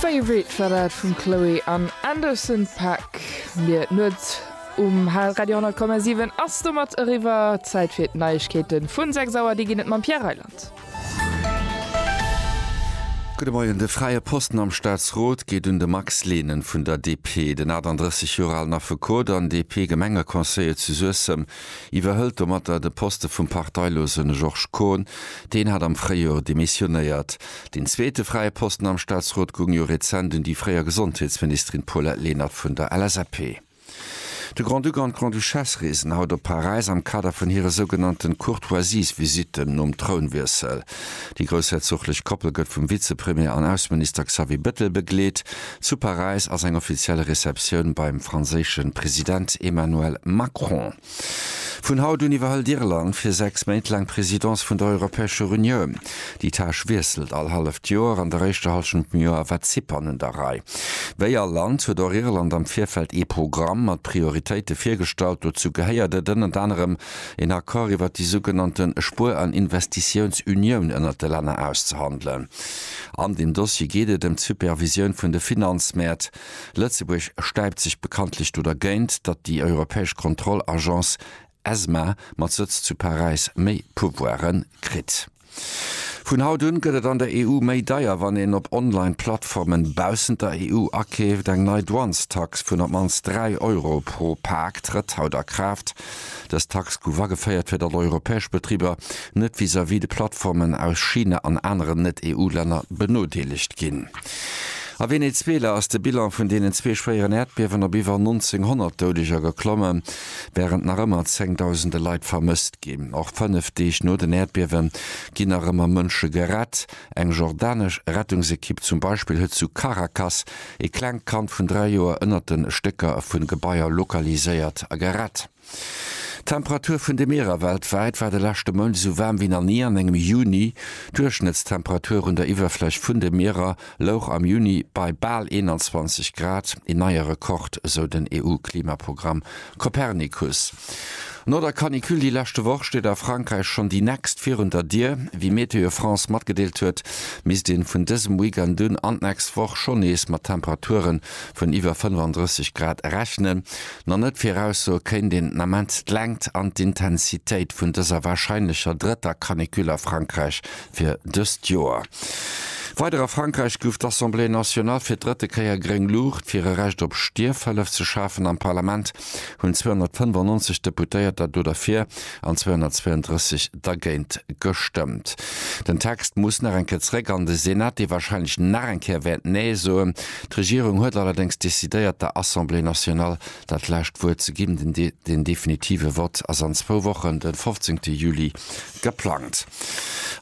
Favorite war dat vum Chloe an Anderson Paak. Mir d'Nuet um Radio 10,7 ass domat eriwwer. Zäit fir d'Neiegkeeten vun 6 Auer. Déi ginn et mam Pierre Reyland. Gudde Moien. De Fräie Posten am Staatsrot geet un de Max Lehnen vun der DP. Den 38 Joer alen Affekot an DP-Gemengeconseiller zu Suessem iwwerhëlt domatter de Poste vum Parteilosen Georges Kohn. Deen hat am Fréijoer demissionéiert. Deen zweete fräie Posten am Staatsrot goung jo rezent un déi fréier Gesondheetsministerin Paulette Lenert vun der LSAP. De Grand-Duc an d'Grande-Duchesse reesen haut op Paräis am Kader vun hire sougenannten Courtoisiesvisitten nom Trounwiessel. Déi groussherzochlech Koppel gëtt vum Vizepremier an Ausseminister Xavier Bettel begleet. Zu Paräis ass eng offiziell Receptioun beim franséische President Emmanuel Macron. Vun haut un iwwerhëlt Irland fir sechs Méint laang d'Presidence vun der Europäescher Unioun. Déi Tâche wiesselt all halleft Joer. An der éischter Hallschent vum Joer war Zypern un der Rei. Wéi all Land huet och Irland am Virfeld ee Programm mat Prioritéite virgestallt. Dozou gehéiert et ënnert anerem, een Accord iwwert déi sougenannte Spuer an Investitiounsunioun ënnert de Länner auszehandelen. An deem Dossier geet et ëm d'Supervisioun vun de Finanzmäert. Lëtzebuerg stäipt sech bekanntlech do dergéint, datt déi europäesch Kontroll-Agence ESMA mat Sëtz zu Paräis méi Pouvoire kritt. Vun haut un gëtt et an der EU méi deier, wann een op Online-Plattformen baussent der EU akeeft. Eng nei Douanestax vun op d'mannst 3 Euro pro Pak trëtt haut a Kraaft. Dës Tax gouf ageféiert, fir datt europäesch Betriber net vis-à-vis de Plattformen aus China an aneren Net-EU-Länner benodeelegt ginn. A Venezuela ass de Bilan vun deenen zwee schwéieren Äerdbiewen op iwwer 1.900 Doudeger geklomme, wärend nach ëmmer zéngdausende Leit vermësst ginn. Och fënnef Deeg no den Äerdbiewe ginn nach ëmmer Mënsche gerett. Eng jordanesch Rettungsekipp zum Beispill huet zu Caracas Ee klengt Kand vun 3 Joer ënnert de Stécker vu Gebaier lokaliséiert a gerett. D'Temperatur vun de Mierer weltwäit war de leschte Mount esou waarm wéi nach ni an engem Juni. D'Duerchschnëttstemperatur un der Iwwerfläch vun de Mierer louch am Juni bei bal 21 Grad, een neie Rekord, esou den EU-Klimaprogramm Copernicus, No der Canicule déi leschte Woch steet a Frankräich schonn déi nächst virun der Dier. Wéi Météo France matgedeelt huet, misst ee vun dësem Weekend un an d'nächst Woch schonn nees mat Temperature vun iwwer 35 Grad rechnen. Nach net viraussoe kéint een den Ament d'Längt an d'Intensitéit vun dëser warscheinlecher drëtter Canicule a Frankräich, Fir dëst Joer weider a Frankräich gouf d'Assemblée nationale fir d'drëtte Kéier gréng Luucht, fir e Recht op Stierfhëllef ze schafen. Am Parlament hunn 295 Deputéierter do derfir an 232 dergéint gestëmmt. Den Text muss nach eng Kéier zréck an de Senat, dee warscheinlech nach eng Kéier wäert Nee soen. D'Regierung huet allerdéngs decidéiert, der Assemblée nationale dat lescht Wuert ze ginn. Den definitive Vott ass an zwou Wochen, de 15 Juli, Geplangt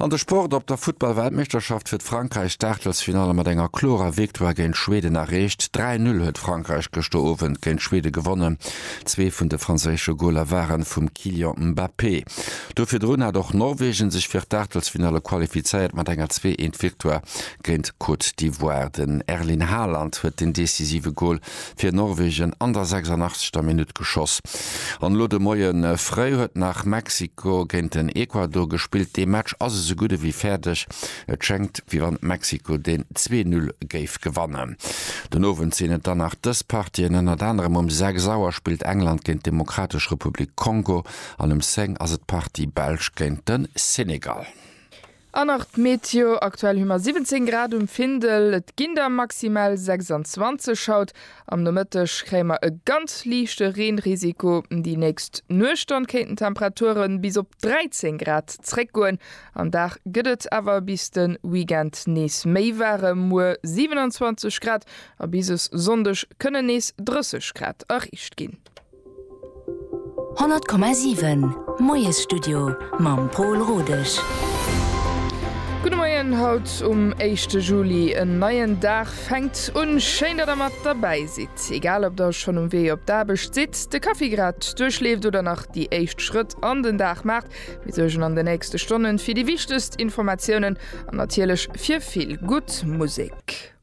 an de Sport, Op der Futtball-Weltmeeschterschaft huet Frankräich d'Aachtelsfinalle mat enger klorer Victoire géint Schweden erreecht. 3-Null huet Frankräich gëschter Owend géint Schweden gewonnen. Zwee vun de franséische Goler ware vum Kylian Mbappé. Do virdrun hat och Norwegen sech fir d'Aachtelsfinalle qualifizéiert mat enger Zwee-Eent-Victoire géint Côte d'Ivoire. Den Erling Haaland huet den decisive Gol fir Norwegen an der 86. Minutt geschoss. An elo de Moie fréi huet nach Mexiko géint den Ecuador gespillt. Dee Match ass esou gutt ewéi fäerdeg. Et schéngt wéi wann Mexiko deen zwee Null géif gewannen. Den Owend sinn et dann nach dës Partien, ënnert anerem um sechs Auer spillt England géint d'Demokratesch Republik Kongo an um zéng ass et d'Partie Belsch géint de Senegal. An nach d'Meteo, aktuell hu mer 17 Grad um Findel, et ginn der maximal 26 haut. Am Nomëtteg kréie mer e ganz liichte Reenrisiko, déi nächst Nuecht dann kéinten d'Temperature bis op 13 Grad zréckgoen. Am Dag gëtt et awer bis de Weekend nees méi waarem, muer 27 Grad a bis e Sonndeg kënnen nees 30 Grad erreecht ginn. 100,7 Moiesstudio mam Pol Rodesch. Gudde Moien haut um éischte Juli. En neien Dag fänkt un. Schéin, datt der mat derbäi sidd. Egal ob der schonn um Wee op d'Aarbecht sidd, de Kaffi grad duerchleeft oder nach déi éischt Schrëtt an den Dag maacht, mir suergen an de nächste Stonne fir déi wichtegst Informatiounen an natierlech fir vill gutt Musek.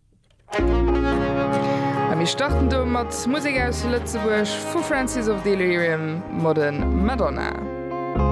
A mir starten do mat Musek aus Lëtzebuerg, vu Francis of Delirium, Modern Madonna.